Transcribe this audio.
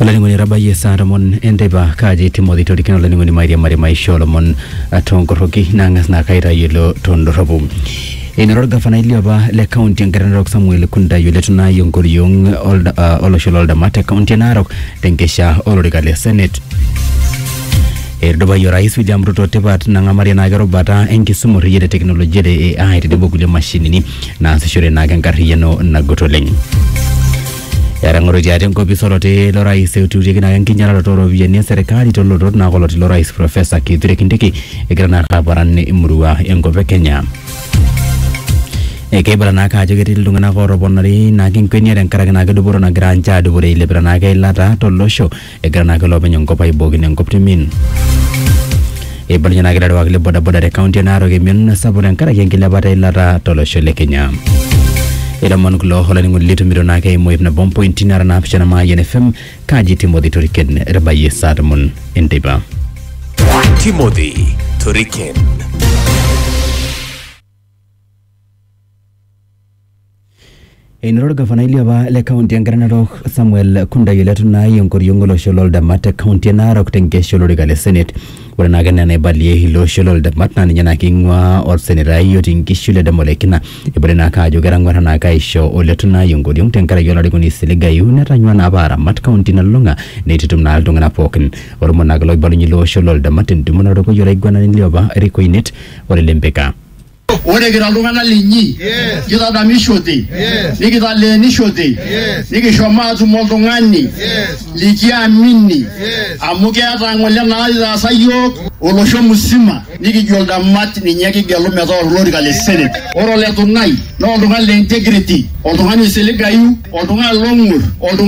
olainining'oni etabayie saa tomon enteipa kaaji timothy torikino olainining'oni mairiamari maisha olomon ah, toonkorroki naang'as naa kaitayiolo tondorropu enoto orgavanai liopa le kaunti engarri narok samuel kuntai oletu naai enkoriong olda- ah, olosho loldama te kaunti e narok tenkesha olorika le senate etudupayie orais William Ruto tipat nang'amarie naake erubata enkisuma orreyiet e teknolojia le AI tenebo kulie mashinini naasishore naake enkarriyiano nagut oleng. Etang'oroitia ate enkopis oloti lo rais eututieki naake enkinyalaroto ooropiyiani eserkali tolotot naake oloti lo rais Profesa Kithure Kindiki egira naake aparan emurua enkop e Kenya. Ekeibala naake ajo ketii iltung'anak ootoponari naake enkwenia tenkaraki naake dupoto nagira ninche aadupore eilepita naake eilata tolosho Egira naake iloopeny enkop aibookino enkop timin. Eibalunyie naake ilarewak le bodaboda te kaunti e Narok emion sapuk tenkaraki enkilepata eilata tolosho le Kenya. Ilomon kulo olainining'oni litumito naake eimu ip nabo mpointi nara naapishana Mayian FM kaji Timothy Toriken etabayie saa tomon enteipa. Timothy Toriken. Enoto olgafanai liopa le kaunti e Ngare Narok Samuel Kundai eletu naai enkoriong olosho loo ldemat te kaunti e Narok te nkesha olorika le senet. Ore naake enaa enaibalie ilo osho loo ldemat naa ninye naake eing'uaa olsenetai otii Nkishu Ledama Ole Kina. Eibalie naake ajo ketang'uarra naake aisho Oletu Naai enkoriong tenkaraki olarikoni Siligayu netanyua naapa aramat kaunti nalulung'a neitutum naa iltung'ana pooki. Olomoni naake loibalunye ilo osho loo ldemat tentumo natorikoyie olaiguanani liopa Eric Oinet ole Lempeka. Ore kira iltung'anak linyi, kitadamishote, nikitaleenishote, nikishomo aatum oltung'ani likiamini amu keeta ng'ole naitaasa iyiook olosho musima nikijo ildamat ninye kigelu metaa olorika le Senate. Ore ole Tunai naa oltung'ani le integrity, oltung'ani oisiligayu, oltung'ani long'ur, oltung'ani